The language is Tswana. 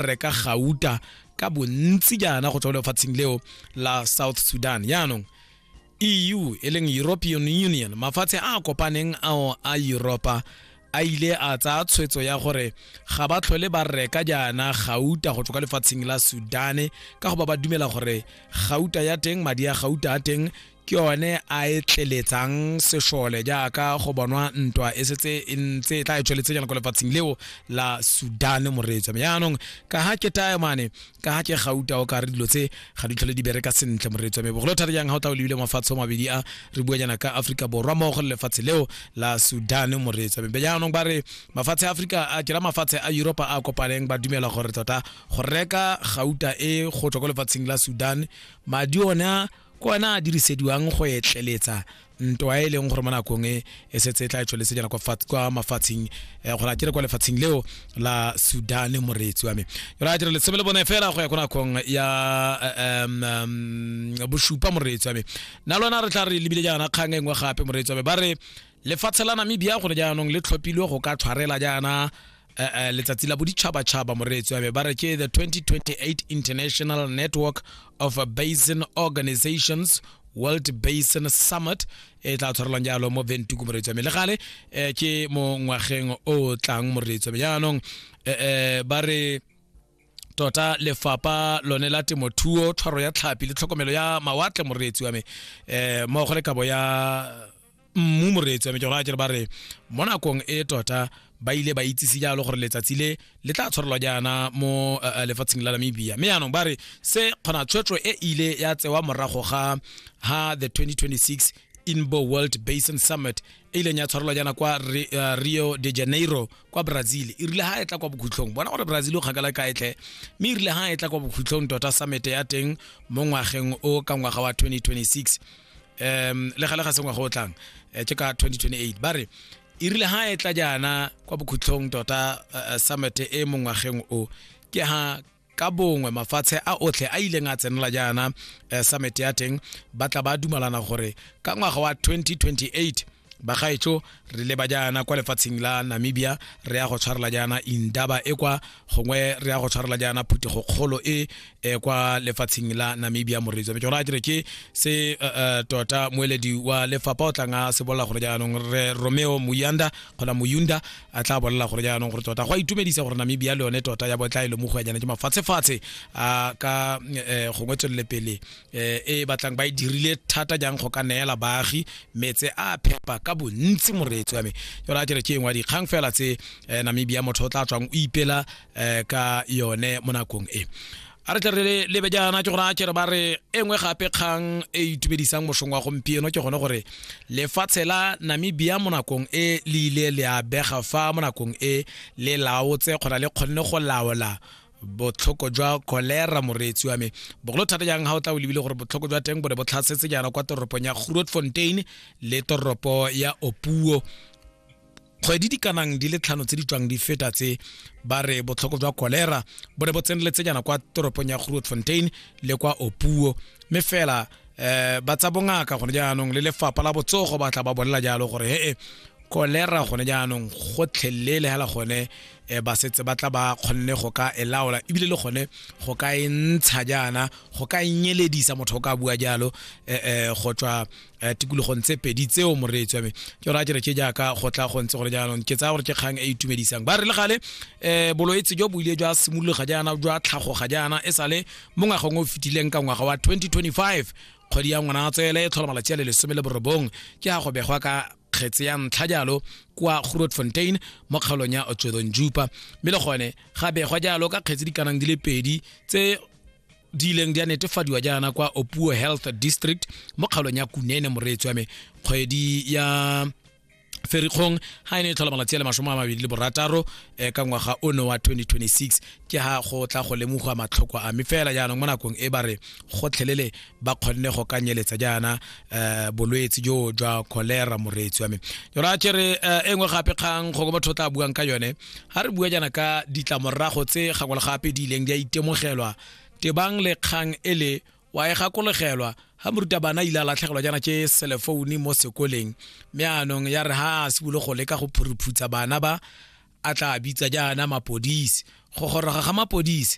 reka gauta ka bontsi jaana go tswa lefatsheng leo la south sudan jaanong eu e leng european union mafatshe a a kopaneng ao a europa a ile a tsaya tshwetso ya gore ga ba tlhole ba reka jaana gauta go tswa kwa lefatsheng la sudane ka go ba ba dumela gore gauta ya teng madi a gauta a teng ke yone a e tleletsang sešole jaaka go bonwa ntwa e setse e ntse e tla e tsweletse jana ko lefatsheng leo la sudan moreetsa me jaanong ka ga ke taemane ka ga ke gauta o ka re dilo tse ga di tlhole di bereka sentle moreetsa me bogolo thata jang ga o tla o lebile mafatshe o mabedi a re bua jana ka aforika borwa mmogo le lefatshe leo la sudan moreetsa me jaanong ba re mafatshe a aforika a kera mafatshe a europa a kopaneng ba dumela gore tota go reka gauta e go tswa ko lefatsheng la sudan madi ona ke ona a dirisediwang go etleletsa ntwa e leng gore mo nakong e e setse e tla e tsweletse jana kwa mafatsheng um gore a kere kwa lefatsheng leo la sudan moreetsi wa me yona a dire letsebe le bone fela go ya ko nakong ya um bosupa moreetsi wa me na lona re tla re lebile jaana kgang e nngwe gape moreetsi wa me ba re lefatshe la namibia gone jaanong le tlhophilwe go ka tshwarela jaana eh, eh, letsatsi la boditšhabatšhaba moreetsi wa me ba re ke the 2028 international network of basin organizations world basin summit e tla tshwarelwang jalo mo ventuku moreetsi wa me le gale eh, ke mo ngwageng o tlang moreetsi wa me jaanong eh, eh, ba re tota lefapa lone la temothuo tshwaro ya tlhapi le tlhokomelo ya mawatle moreetsi wa me eh mo go le kabo ya mmu moreetsi wa me ke gona kere ba re mo nakong e tota ba ile ba itsise jalo gore letsatsi le le tla tshwarelwa jaana mo uh, lefatsheng la namibia mme yaanong ba re se kgona tshwetso e ile ya tsewa morago ga ha the 2026 inbo world basin summit e ileng ya tshwarelwa jaana kwa uh, rio de janeiro kwa brazil e rile ha e tla kwa bokhutlhong bona gore brazil o kgakala ka etlhe mme e rile ha e tla kwa bokhutlhong tota summit ya teng mo ngwageng o ka ngwaga wa 2026 um le gale ga sengwa go tlang eh, ke ka 2028 ba re e rile ha e tla jaana kwa bokhutlhong tota eh, eh, summit e mo ngwageng o ke ha ka bongwe mafatshe a otlhe a ileng a tsenela jaana eh, summit ya teng ba tla ba dumalana gore ka ngwaga wa 2028 bagaetsho re leba jaana kwa lefatsheng la namibia re ya go tshwarela jaana indaba e kwa gongwe re ya go tshwarela jaana phuthego kgolo e e kwa lefatsheng la namibia moreetsi wa metsona a kere ke se uh, uh, tota moeledi wa lefapha o tlang a se bolela gore jaanong re romeo moyanda kgona moyunda a tla bolela gore jaanong gore tota go a itumedisa gore namibia le yone tota ya botla e le mogwenyana ke mafatshefatshe a ka eh, gongwe tswelele pele eh, e e batlang ba e dirile thata jang go ka neela baagi metse a phepa ka bontsi moreetsi wa me yone a kere ke engwe dikgang fela tse eh, namibia motho o tla tswang o ipela eh, ka yone mo nakong e a re tle re lebe jaana ke gona kere ba re e nngwe gape kgang e itumedisang mosong wa gompieno ke gone gore lefatshe la namibia mo nakong e le ile le a bega fa mo nakong e le laotse kgona le kgonne go laola botlhoko jwa kolera moreetsi wa me bogolo thata jang ga o tla o lebile gore botlhoko jwa teng bo ne bo tlhasetse jaana kwa toropong ya grootfontein le toropo ya opuo kgwedi di kanang di le tlhano tse di tswang di feta tse ba re botlhoko jwa kolera bo ne bo tseneletse jaana kwa toropong ya grootfontein le kwa opuo mme fela um ba tsa bongaka gone jaanong le lefapha la botsogo ba tla ba bolela jalo gore hee kolera gone jaanong gotlhelele le hela gone um ba setse ba tla ba kgonne go ka e laola ebile le gone go ka e ntsha jaana go ka e nyeledisa motho o ka bua jalo um go tswa um tikologong tse pedi tseo moreetsi wa me ke gore a kere ke jaaka go tla go ntse gore jaanong ke tsaya gore ke kgang e itumedisang ba re le gale um boloetse jo bo ile jwa simologa jaana jwa tlhagoga jaana e sale mo ngwageng o fetileng ka ngwaga wa 2025 kgwedi ya ngwana tswele e tlhola malatsi a le lesome le borobong ke a go begwa ka kgetse ya ntlha jalo kwa grootfontein mo kgaolong ya otswedong jupa mme le gone ga begwa jalo ka kgetse di kanang di le pedi tse di ileng di a netefadiwa jaana kwa opuo health district mo kgaolong ya kunene moreetsi wa me kgwedi ya ferikgong ha e ne e tlhola malatsi a le masome a mabedi le borataro um ka ngwaga o ne wa 2026 ke ha go tla go lemogwa matlhoko a mme fela jaanong mo nakong e ba re gotlhelele ba kgonne go ka nyeletsa jaana um bolwetse jo jwa cholera moreetsi wa me jora ke re eh, e nngwe gape kgang go batho tla buang ka yone ga re bua jaana ka ditlamorago tse gangwe le gape di ileng di a itemogelwa tebang le kgang e le wa e gakologelwa ga moruta bana ile a latlhegelwa jaana ke selefoune mo sekoleng mme anong ya re ga a simolo go leka go phuriphutsa bana ba a tla bitsa jaana mapodisi go goroga ga mapodisi